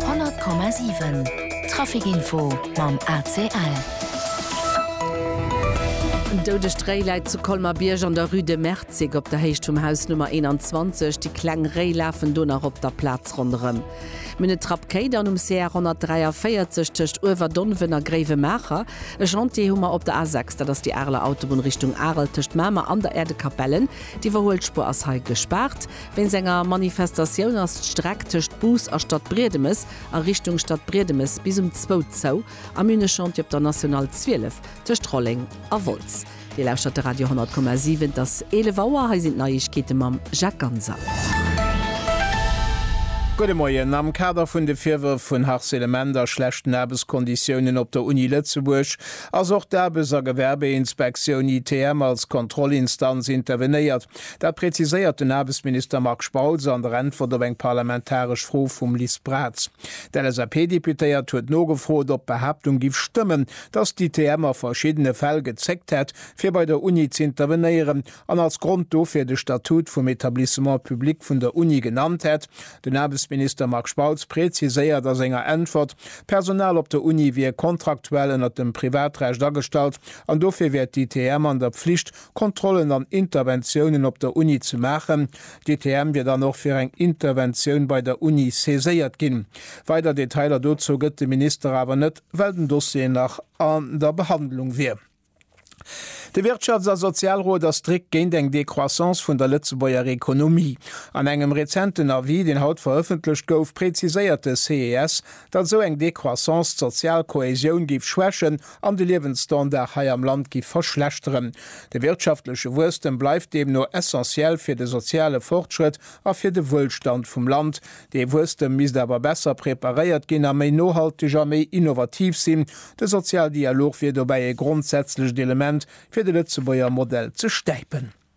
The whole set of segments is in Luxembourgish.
100,7 Traficinfo mam ACL. En doudegt Réi läit zu Colmer-Bierg an der Rue de Merzig op der Héicht vum Haus Nummer 21. Déi kleng Réi lafen do nach op der Plaz ronderëm. Mir hunn e Trapp Quai dann um CR 143 tëscht Uewerdonven a Gréiwemaacher. E Chantier hu mer op der A6, dat ass déi Areler Autobunn Richtung Arel tëscht Mamer an der Äerdekapellen. D'Iwwerhuelspur ass hei gespaart. Wéinst enger Manifestatioun ass d'Streck tëscht Bus a Stadbriedemes a Richtung Stadbriedemes bis um zwou zou. Am une Chantier op der National 12 tëscht Rolleng a Wolz. Dir lauschtert de Radio 10,7. Et ass 11 Auer. Hei sinn d'Neiegkeete mam Jacques Ganser. Gudde Moien. Am Kader vun de Virwërf vun Harcelement a schlechten Aarbechtskonditiounen op der Uni Lëtzebuerg ass och d'Aarbechts a Gewerbeinspektioun, ITM, als Kontrollinstanz intervenéiert. Dat präziséiert den Aarbechtsminister Marc Spautz an der Äntwert op eng parlamentaresch Fro vum Liz Braz. D'LSAP-Deputéiert huet nogefrot, ob d'Behaaptung giff stëmmen, dass d'ITM a verschiddene Fäll gezéckt hätt, fir bei der Uni z'intervenéieren, an als Grond dofir de Statut vum Etablissement public vun der Uni genannt hätt. Den Aarbechtsminister Marc Spautz präziséiert a senger Äntwert, D'Personal op der Uni wier kontraktuell ënnert dem Privatrecht agestallt an dofir wär d'ITM an der Pflicht, Kontrollen an Interventiounen op der Uni ze maachen. D'ITM wier dann och fir eng Interventioun bei der Uni saiséiert ginn. Weider Detailer dozou gëtt de Minister awer net, well den Dossier nach an der Behandlung wier. De Wirtschafts a Sozialrot ass strikt géint eng Décroissance vun der Lëtzebuerger Ekonomie. An engem rezenten Avis, deen haut verëffentlecht gouf, präziséiert de ces, datt esou eng Décroissance d'sozial Kohäsioun géif schwächen an de Liewensstandard hei am Land géif verschlechteren. De wirtschaftleche Wuesstem bleift deemno essentiell fir de soziale Fortschrëtt a fir de Wuelstand vum Land. Dee Wuesstem misst awer besser preparéiert ginn a méi nohalteg a méi innovativ sinn. De Sozialdialog wier dobäi e grondsätzlecht Element, fir de Lëtzebuerger Modell ze stäipen.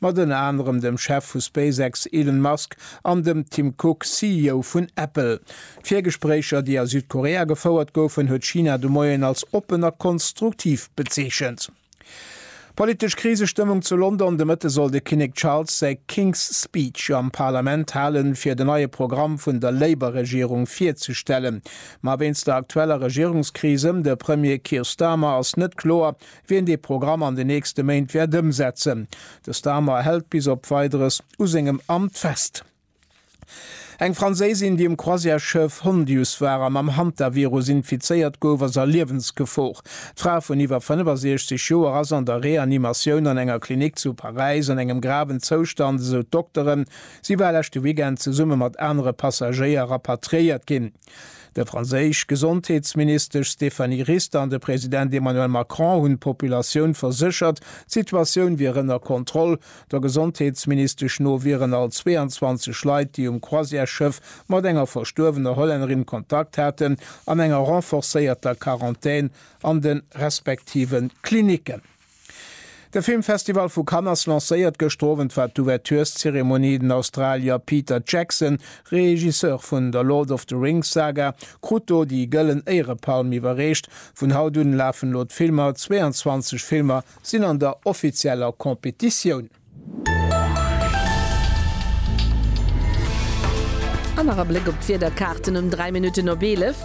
Mat ënner anerem dem Chef vu SpaceX Elon Musk an dem Tim Cook, CEO vun Apple. D'Virgespréicher, déi a Südkorea gefouert goufen, huet China de Moien als oppen a konstruktiv bezeechent. Politesch Krisestëmmung zu London, De Mëtte soll de Kinnek Charles säi King's Speech am Parlament halen, fir den neie Programm vun der Labour-Regierung virzestellen. Ma wéinst der aktueller Regierungskris ëm de Premier Keir Starmer ass net kloer, wien dee Programm an den nächste Méint wäert ëmsetzen. De Starmer hält bis op Weideres u sengem Amt fest. Eng Franséisin, déi um Croisièresschëff Hondius war an mam Hantavirus infizéiert gouf, ass a Liewensgefor. D'Fra vun iwwer 65 Joer ass an der Reanimatioun an enger Klinik zu Paräis an engem graven Zoustand, esou d'Dokteren. Si war leschte Weekend zesumme mat anere Passagéier rapatriéiert ginn. De franséisch Gesondheetsministesch Stéphanie Rist an de President Emmanuel Macron hunn d'Populatioun verséchert, d'Situatioun wier ënner Kontroll. Der Gesondheetsministesch no wieren all 22 Leit, déi um Croisièresschëff mat enger verstuerwener Hollännerin Kontakt haten, an enger renforcéierter Quarantän an de respektive Klinicken. De Filmfestival vu Cannes ass lancéiert. Gëschter Owend war d'Ouvertureszeremonie. Den Australier Peter Jackson, Regisseur vun der Lord of the Rings Saga, krut do déi Gëllen Éierepalm iwwerreecht. Vun haut un lafen elo d'Filmer, 22 Filmer sinn an der offizieller Competitioun. An nach e Bléck op d'Wiederkaarten um 3 Minutten op 11.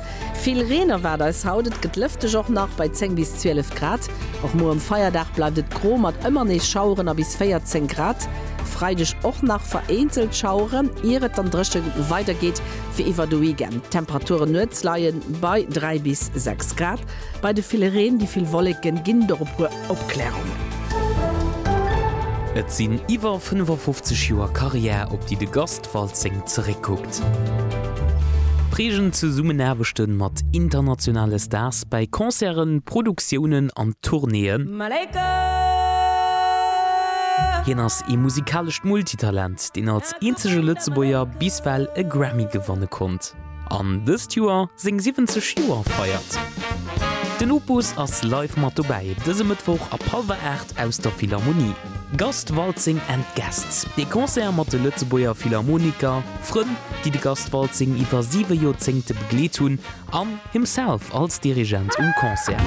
Vill Reen erwaart eis haut, et gëtt lëfteg, och nach bei 10 bis 12 Grad. Och muer um Feierdag bleift et gro mat ëmmer nees Schaueren a bis 14 Grad. Freideg och nach vereenzelt Schaueren, ier et dann dréche weider geet fir iwwer de Weekend. D'Temperaturen nuets leie bei 3 bis 6 Grad. Bei de ville Reen, déi vill Wolleken ginn dorop. Opklärungen. Et sinn iwwer 55 Joer Karriär, op déi de Gast Waltzing zeréckkuckt. Prägend Zesummenaarbechte mat internationale Stars bäi Concerten, Produktiounen an Tournéeën. Hien ass ee musikalescht Multitalent, deen als eenzege Lëtzebuerger bis well e Grammy gewanne konnt. An dëst Joer seng 70 Joer feiert. Den Opus ass live mat dobäi dëse Mëttwoch ab hallwer 8 aus der Philharmonie. Gast Waltzing and Guests, ee Concert mat de Lëtzebuerger Philharmoniker, Frënn, déi de Gast Waltzing iwwer siwe Joerzéngte begleet hunn, an himself als Dirigent um Concert.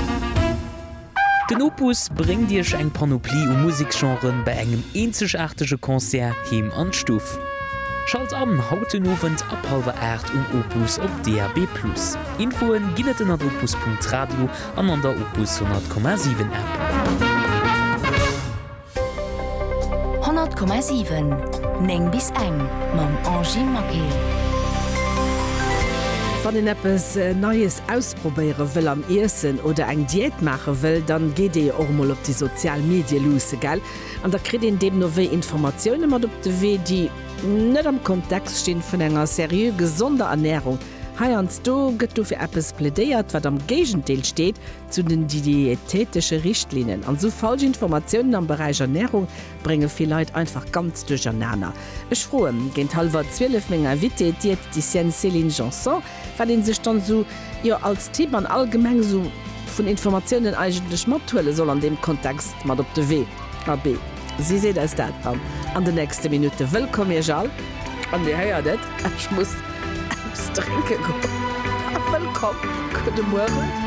Den Opus bréngt Iech eng Panoplie u Museksgenren bei engem eenzegaartege Concert heem an d'Stuff. Schalt an haut den Owend ab hallwer 8 um Opus op DAB+. Infoen ginn et ënnert opus.radio an an der Opus 100,7 App. 100,7 9 bis eng mam Angie Maquet. Wann een eppes Neies ausprobéiere wëll am Iessen oder eng Diät maache wëll, dann geet ee jo och emol op déi sozial Medie luusse, gell? An da kritt een deemno wéi Informatioune mat op de Wee, déi net am Kontext stinn vun enger seriö gesonder Ernärung. Heiansdo gëtt do fir eppes plädéiert, wat am Géigendeel steet Zu den diätetesche Richtlinnen an esou falsch Informatiounen am Beräich Ernährung brénge vill Leit einfach ganz duerchernaner. Ech froe géint hallwer 12 meng Invitée, d'Diäteticienne Céline Janson, wat ee sech dann esou, jo, als Tipp an allgemeng esou vun Informatiounen eigentlech mathuele soll an deem Kontext mat op de Wee. Abee, si seet eis dat dann an de nächste Minutte. Wëllkomm Iech all. An Dir héiert et, ech muss eppes drénke goen. Wëllkomm. Gudde Mueren.